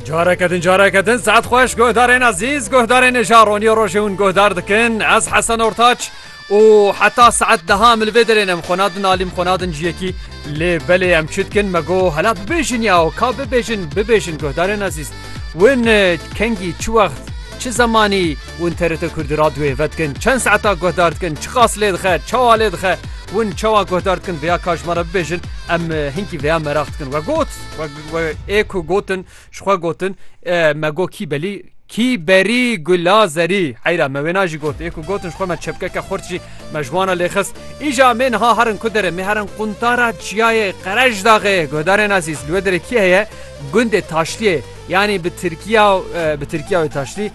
Careke din careke din saet xweş guhdarên ezîz guhdarên êja ronî rojê hûn guhdar dikin ez hesen ortaç û heta saet deha min vê derê em xona din alîm xona din ciyekî lê belê em çi dikin me got hela bibêjin ya û ka bibêjin bibêjin guhdarên ezîz win kengî çi wext çi zemanî Win TRT Kurdî radyoyê vedikin çend saeta guhdar dikin, çiqas lê dixe, çawa lê dixe, win çawa guhdar dikin vêya ka ji me re bibêjin em hinkî vêya meraq dikin. We got we ê ku gotin ji xwe gotin me got kî belî kî berî gula zerî heyra me wêna jî got ê ku gotin ji xwe me çepkeke xurt jî me ji wana lê xist. Îja mê niha herin ku derê mê herin quntara çiyayê qerej daxê guhdarên ezîz li wê derê kî heye gundê taşliyê yanî bi Tirkiya bi Tirkiya wê taşlî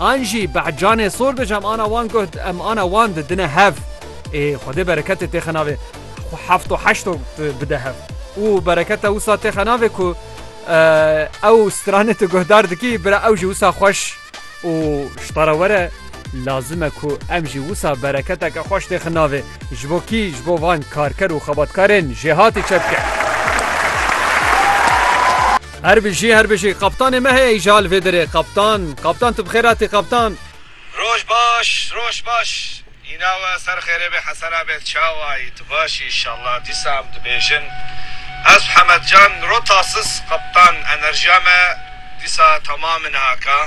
An jî beh canê sor dic em ana wan guh em ana wan di dine hev. Ê Xwedê bereketê têxe navê xwe heft û heşt û bide hev. Û bereketa wisa têxe navê ku ew stranê tu guhdar dikî bira ew jî wisa xweş û şita re were lazim e ku em jî wisa bereketeke xweş têxe navê ji bo kî ji bo van karker û xebatkarên jêhatî çepke. Her bijî her bijî qaptanê me heye îja li vê derê qaptan qaptan tu bi xêr hatî qaptan. Roj baş roj baş îna we ser xêrê be Hesena be çawa yî tu baş î inşallah dîsa em dibêjin ez û Hemed can ro tasis qaptan enerjiya me dîsa temam in haka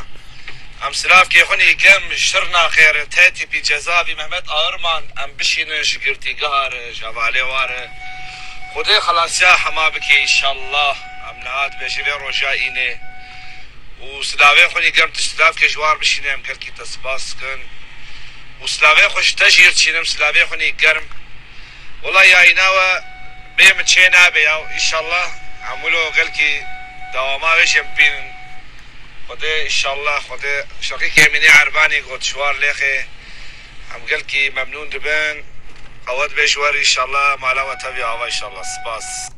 em silav kê xwin î gem şir naxêrin te tîpî ceza vî Mehmet Airman em bişînin ji girtîgeha re ji hevalê wa re xwedê xelasiya hema bike inşallah. Em niha dibê ji vê roja înê û silavên xwe nîgem tu ji lavkê ji war bişînê em gelkî te spas dikin û silavên xwe ji te jîr dişînim silavê xwe nî germ wela ya îna we bê min çê nabe ya inşallah hemû lo gelkî dewama wê jê bibînin xwedê inşallah xwedê Şakîk Emînê Erbanî got ji war lêxê em gelkî memnûn dibin qewet bê ji we re inşallah mala we tevî ava inşallah spas.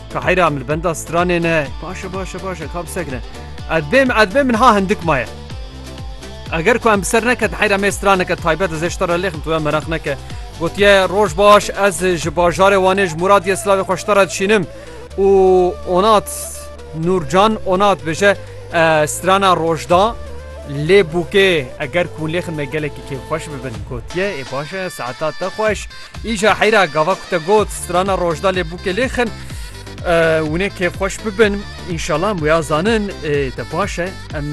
Ka heyra em li benda stranê ne. Baş e baş e baş e ka bi sekre. Ez bêm ez bêm min ha hindik maye. Eger ku em bi ser neket heyra me straneke taybet ez eştara lêxim tu em meraq neke. Gotiye roj baş ez ji bajarê wanê ji Muradiye silavê xweştara dişînim û onat Nurcan onat bêje strana rojda lê bûkê eger ku lêxin me gelekî kê xweş bibin gotiye ê baş e saeta te xweş. Îja heyra gava ku te got strana Rojdalê bûkê lê xin. Winê kêfxweş bibin înşala em wêya zanin te baş e em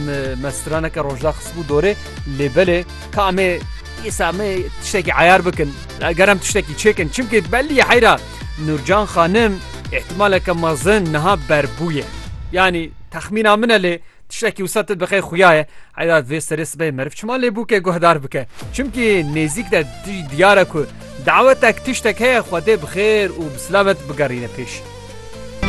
me straneke Rojda xisbû dorê lê belê ka em ê îsa me tiştekî eyar bikin eger em tiştekî çêkin çimkê belliye heyra Nurcan xanim îhtimaleke mezin niha berbûye yanî texmîna min e lê Tiştekî wisa te bi qey xuya ye heyda vê serê sibê meriv çima lê bûke guhdar bike. Çimkî nêzîk de tij diyar e ku dawetek tiştek heye xwedê bi xêr û bi silamet bigerîne pêş.